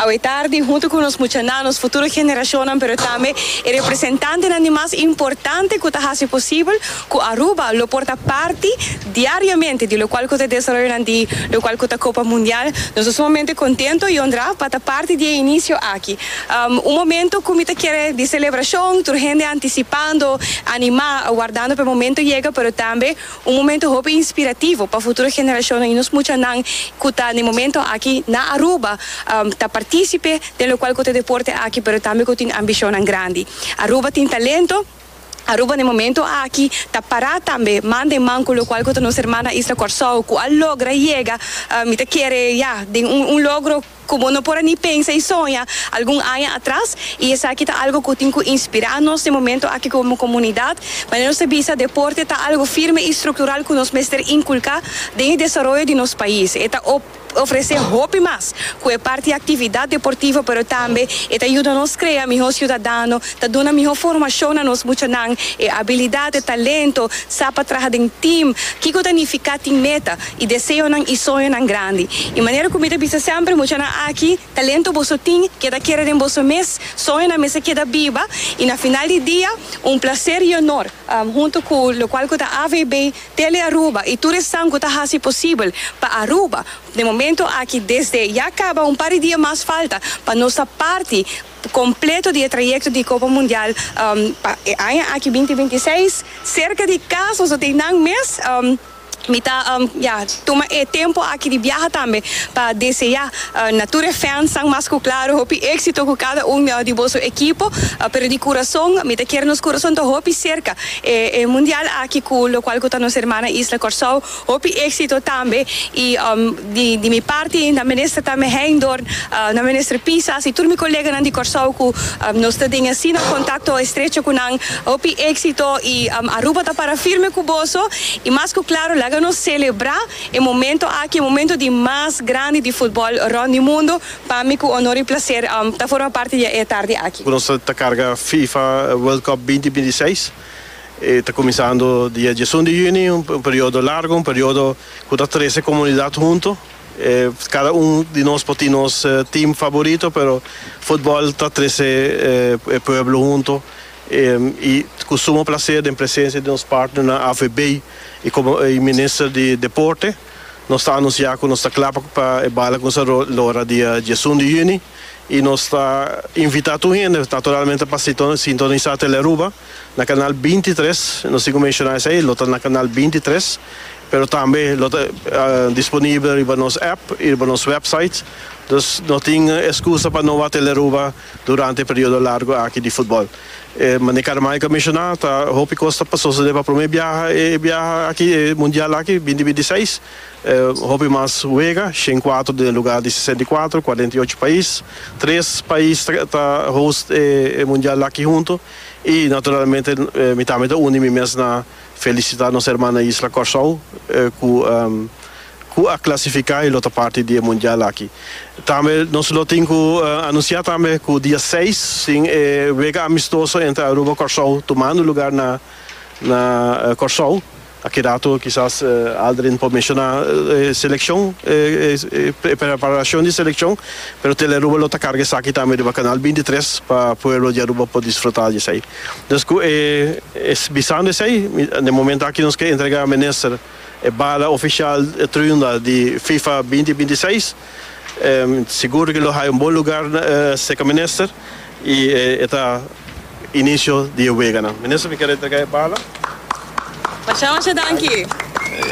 Awe tardi, huntu ku nos muchanan, nos futuro generashonnan pero tambe e representantenan di mas importante ku ta hasi posibel ku Aruba lo por ta parti diariamente di lokual ku ta desaroyonan di lokual ku ta Kopa Mundial. Nos ta sumamente kontento i onrá pa ta parti di e inisio aki. Un momento ku mi ta kere di selebrashon, tur hende antisipando, animá, wardando pa e momento yega pero tambe, Un momento hopi inspirativo pa futuro generashonnan i nos muchanan ku ta na e momento aki na Aruba ta partisipe den lokual ku ta e deporte aki pero tambe ku tin ambishonnan grandi. Aruba tin talento, Aruba na e momento aki ta pará tambe man den man ku lokual ku ta nos hermana isla Kòrsou ku a logra yega mi ta kere ya den un logro Ku bo no por a ni pensa i soña algun aña atras, i esaki ta algu ku tin ku inspirá nos den momentu aki komo komunidat. Manera nos ta bisa, deporte ta algu firme i struktural ku nos mester inkulká den e desaroyo di nos pais. E ta ofresé hopi mas ku e parti aktividat deportivo, pero tambe e ta yuda nos krea mihó siudadano, ta duna mihó formashon na nos muchanan, e abilidat, e talento, sa pa traha den tim. Kiko ta nifiká tin meta? i deseonan i soñonan grandi. I manera ku mi ta bisa semper, muchanan aki, talento boso tin, keda kere den boso mes, soñonan mester keda biba, i na final di dia, un plaser i onor, huntu ku lo kual ku ta AVB, Tele Aruba, i tur esnan ku ta hasi posibel pa Aruba, den momento aki, desde ya kaba, un par di dia mas falta, pa nos ta parti kompleto di e trayekto di Kopa Mundial, pa e aña aki binti binti seis, serka di kas, nos lo tin nan mes. Mi ta ya tuma e tempo aki di biaha tambe pa desea na tur e fansnan mas ku klaru hopi éksito ku kada un di boso ekipo. Pero di kurason mi ta kier nos kurason ta hopi serka e mundial aki ku lokual ku ta nos hermana isla Kòrsou. Hopi éksito tambe i. Di di mi parti na minister ta mi Heindorn, na minister Pisas y tur mi coleganan di Corsou cu nos ta den asina contacto estrecho cu nan. Hopi exito y Aruba ta para firme cu boso y mas cu claro laga nos celebra e momento aki, e momento di mas grandi di futbol rond di mundo. Pa mi cu honor y placer ta forma parti di e tardi aki. Nos ta carga Fifa World Cup binti binti seis, e ta cuminsando dia diesun di juni, un periodo largo, un periodo. Cu ta trece comunidad hunto. E cada un di nos por tin nos team favorito, pero futbol ta trece e pueblo hunto. Y cu sumo placer den presencia di nos partnernan AVB y como y Minister di Deporte nos ta anuncia cu nos ta cla pa e bala cu nos ta lora dia diesun di Juni y nos ta invita tur hende naturalmente pa sintonisa Tele Aruba. Na kanal binti tres, nos tin ku menshoná esei, lo ta na kanal binti tres, pero tambe lo ta disponibel riba nos app i riba nos wèpsait, dus no tin eskusa pa no wak tele Aruba durante e periodo largu aki di futbòl. Mane Carmike a menshoná, ta hopi kos ta pa sosodé pa promé biaha e biaha aki, e mundial aki, binti binti seis, hopi mas wega, shen kuatro den e lugá di sesenta i kuatro, kuarenta i ocho pais, tres pais ta host e mundial aki huntu. I naturalmente mi tambe ta uni mi mes na felisitá nos herman na isla Kòrsou ku ku a klasifiká i lo ta parti di e mundial aki. Tambe nos lo tin ku anunsiá tambe ku dia seis tin e wega amistoso entre Aruba Kòrsou tumando lugá na na Kòrsou. A keda tur kisas Aldrin por menshoná e selekshon, e preparacion di selekshon, pero Telearuba lo ta karga esaki tambe riba Kanal bintitres pa pueblo di Aruba por disfrutá di esei. Dus ku e bisando esei, den momento aki nos ke entregá Minister e bala ofishal Triunda di fifa binti binti seis. Sigur di ke lo hay un bon lugar se ka menister y e ta inicio di e wega nan. Minister mi kier entrega e bala. Masha masha danki.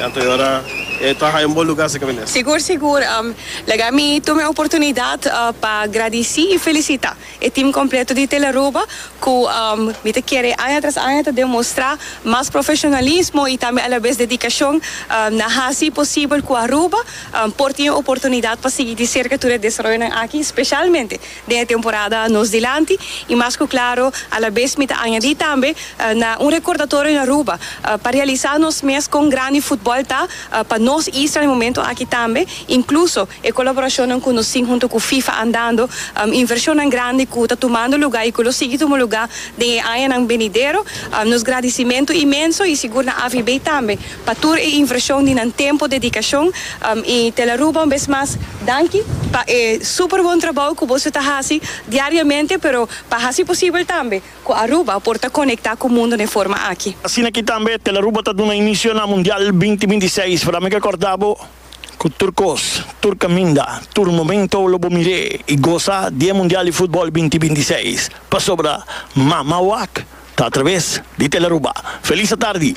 Anto ora e ta hay un bon lugar se ka menister. Sigur sigur. Laga mi tuma e oportunidad pa gradici y felicita. E team completo di Telearuba cu mi ta kere aña tras aña ta demostra mas profesionalismo y tambe alabes dedicacion na haci posibel cu Aruba por tin e oportunidad pa sigui di cerca tur e desaroyonan aki specialmente den e temporada nos dilanti y mas cu claro alabes mi ta añadi tambe na un recordatorio na Aruba pa realisa nos mes con grandi footbal ta pa nos isla na e momento aki tambe. Incluso e colaboracionnan cu nos tin hunto cu FIFA andando, inversionnan grandi cu ta tumando lugar y cu lo sigui tuma lugar den e añanan benidero, nos gradicimento inmenso y sigur na AVB tambe pa tur e inversion di nan tempo, dedicacion y te el Aruba un bes mas danki pa e super bon trabao cu boso ta haci diariamente pero pa haci posibel tambe cu Aruba por ta conecta cu mundo n'e forma aki. Asina ki tambe te el Aruba ta duna inicio na Mundial binti binti seis, pero a mi ke corda bo. cu tur cos, tur caminda, tur momento lo bo mir'é y goza di e Mundial di Futbol binti binti seis, pasobra Mama Wak ta a traves di Telaruba. Feliz atardi!